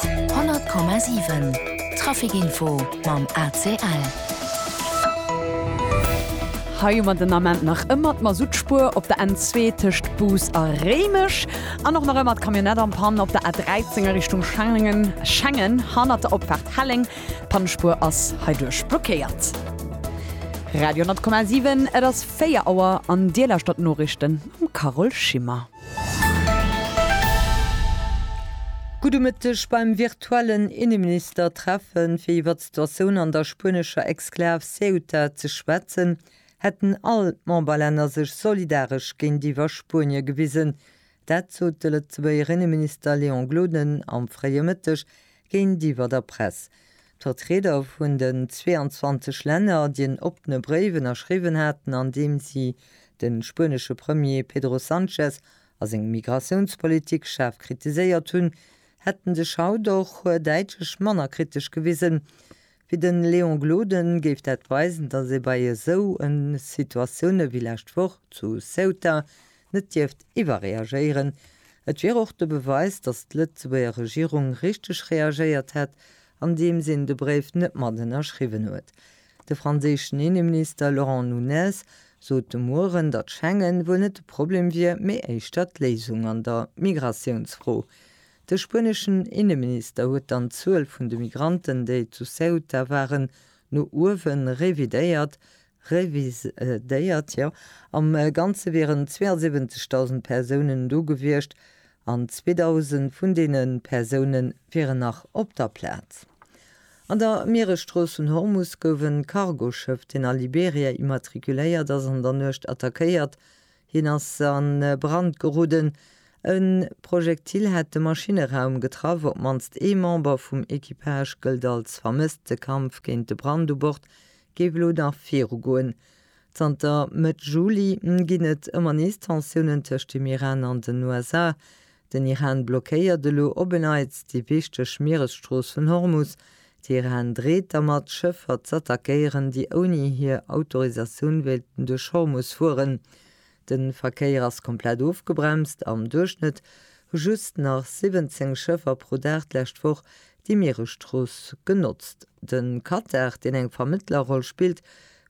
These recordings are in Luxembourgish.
100,7 Trafic Info mam ACL. Hei hu mer den Ament nach ëmmer d'Masutspuer op der N2 tëscht Bous a Réimech an och nach ëmmer d'Camionnette am Panne op der A13 a Richtung Schengen, Schengen hannert der Opfaart Helleng. D'Pannespuer ass heiduerch blockéiert. Radio 100,7 Et ass 4 Auer an Dir lauschtert d'Noriichten mam Carole Schimmer. Gudde Mëtteg. Beim virtuellen Inneministertreffen, fir iwwer d'Situatioun an der spuenescher Exklav Ceuta ze schwätzen, hätten all d'Memberlänner sech solidaresch géintiwwer Spuenie gewisen. Dat sot de Lëtzebuerger Inneminister Léon Gloden am fréie Mëtteg géintiwwer der Press. D'Vertrieder vun den 22 Länner, déi en oppene Bréif ënnerschriwwen haten, an deem si de spuenesche Premier Pedro Sanchez a seng Migratiounspolitik schaarf kritiséiert hunn, hätte sech haut och däitlech manner kritesch gewisen. Fir de Léon Gloden géif dat weisen, datt ee bei esou Situatioune wéi lescht Woch zu Ceuta net dierft iwwerreagéieren. Et wier och de Beweis, datt d'Lëtzebuerger Regierung richteg reagéiert hätt, andeems een de Bréif net mat ënnerschriwwen huet. De franséischen Inneminister Laurent Nunez sot de Mueren, datt Schengen wuel net de Problem wier, mee éischter d'Léisung an der Migratiounsfro. De spueneschen Inneminister huet dann d'Zuel vun de Migranten, déi zu Ceuta waren, no uewe revidéiert, Reviséiert, jo. Am Ganze wieren 72.000 Persounen do gewiescht an 2.000 vun deene Persoune wieren nach op der Plaz. An der Mieresstrooss vun Hormus gouf e Cargoschëff, deen a Liberia immatrikuléiert ass, an der Nuecht attackéiert. Hien ass a Brand geroden. E Projektil hätt de Maschinneraum getraff. Op d'mannst ee Member vum Equipage gëllt als vermësst. De Kampf géint de Brand u Bord géif elo nach viru goen. Zanter Mëtt Juli ginn et ëmmer nees Tensiounen tëscht dem Iran an den USA. Den Iran blockéiert elo op e Neits déi wichteg Mieresstrooss vun Hormus. Teheran dreet dermat, Schëffer z'attackéieren, déi ouni hir Autorisatioun wéilten duerch Hormus fueren. De Verkéier ass komplett ofgebremst, am Duerchschnëtt hu just nach 17 Schëffer pro Dag d'lescht Woch déi Mieresstrooss genotzt. De Katar, deen eng Vermëttlerroll spillt,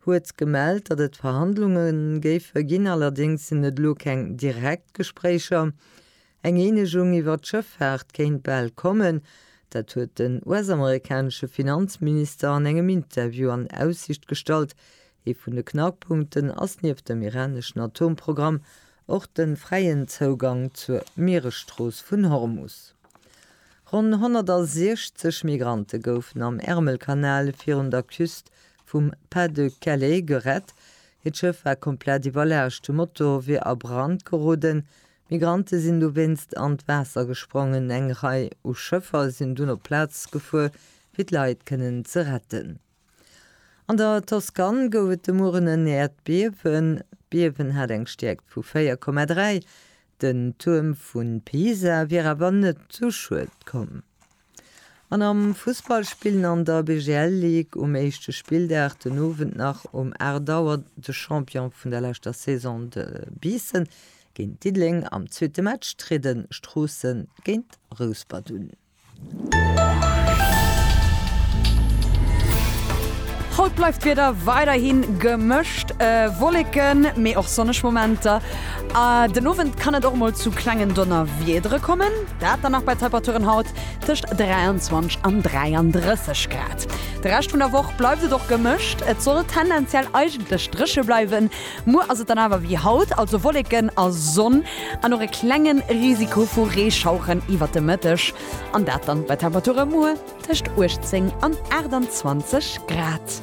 huet gemellt, datt et Verhandlunge géife ginn, allerdéngs sinn et elo keng direkt Gespréicher. Eng Eenegung iwwer d'Schëffaart kéint bal kommen, dat huet den US-amerikanesche Finanzminister an engem Interview an Aussicht gestallt. Ee vun de Knackpunkten ass nieft dem iraneschen Atomprogramm och de fräien Zougang zur Mieresstrooss vun Hormus. Ronn 160 Migrante goufen am Ärmelkanal virun der Küst vum Pas-de-Calais gerett. Hiert Schëff war komplett iwwerlaascht, de Motor wier a Brand geroden, Migrante sinn dowéinst an d'Waasser gesprongen. Eng Rei u Schëffer sinn dunn op d'Plaz gefuer, fir d'Leit kënnen ze retten. An der Toskan gouf et de Mueren en Äerdbiewen. D'Biewen hat eng Stäerkt vu 4,3. Den Tuerm vu Pisa wier awer net zu Schued komm. An am Fussball spillen an der BGL Ligue um éischte Spilldag den Owend nach um 8 Auer de Champion vun der leschter Saison, de Biissen, géint Diddeleng. Am zweete Match triede Stroossen géint Rouspert un. Haut bleift d'Wieder weiderhi gemëscht, Wolleken, mee och sonneg Momenter. Den Owend kann et och mol zu klengen Donnerwiedere kommen, dat dann nach bei Temperaturen haut tëscht 23 an 33 Grad. De Rescht vun der Woch bleift et och gemëscht, et soll tendenziell eigentlech dréche bleiwen. Muer ass et dann awer wéi haut, also Wolleken a Sonn an och e klenge Risiko vu Reeschaueren iwwert de Mëtteg an dat dann bei Temperature muer tëscht 18 an 28 Grad.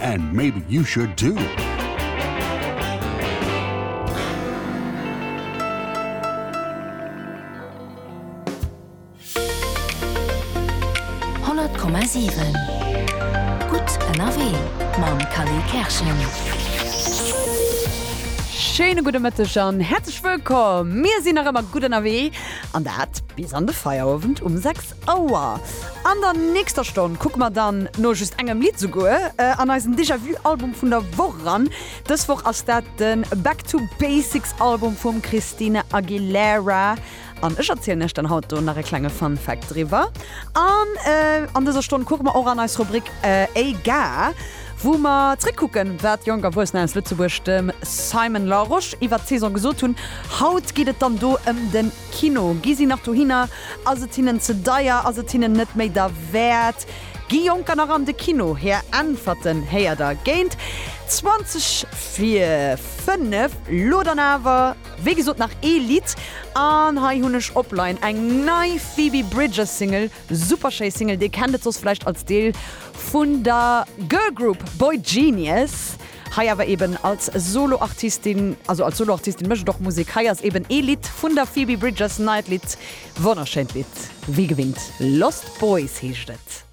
And maybe you should too! Schéine gudde Mëtteg an häerzlech wëllkomm! Mir sinn nach ëmmer gutt ënnerwee an dat bis an de Feierowend um 6. Auer. An der nächster Stonn kucke mer dann no just engem Lidd souguer an eisen Déjà Vu Album vun der Woch eran. Dës Woch ass dat de Back to Basics Album vum Christina Aguilera an ech erzielen iech dann haut do nach e klenge Fun Fact driwwer. An an dëser Stonn kucke mer och an eis Rubrik EIGA wou mer zréck kucken wat jonk Erwuessener aus Lëtzebuerg dem Simon Larosche iwwert d'Saison gesot hunn. Haut geet et dann do ëm den. Kino, gi si nach dohinner? Ass et hinnen ze deier? Ass et hinnen net méi derwäert? Gi Jonker nach an de Kino? Hir Äntwerten héiert der géint 20 vir 5. Lo dann awer wéi gesot nach ee Lidd, an hei hunn ech opline eng nei Phoebe Bridgers Single Super schéi Single, dir kennt et soss vläicht als Deel vun der Girl Group boygenius, hei awer eben als Soloartistin, also als Soloartistin mécht et och Musek. Hei ass eben ee Lidd vun der Phoebe Bridgers, neit Lidd, wonnerschéint Lidd wéi gewinnt, Lost Boys heescht et.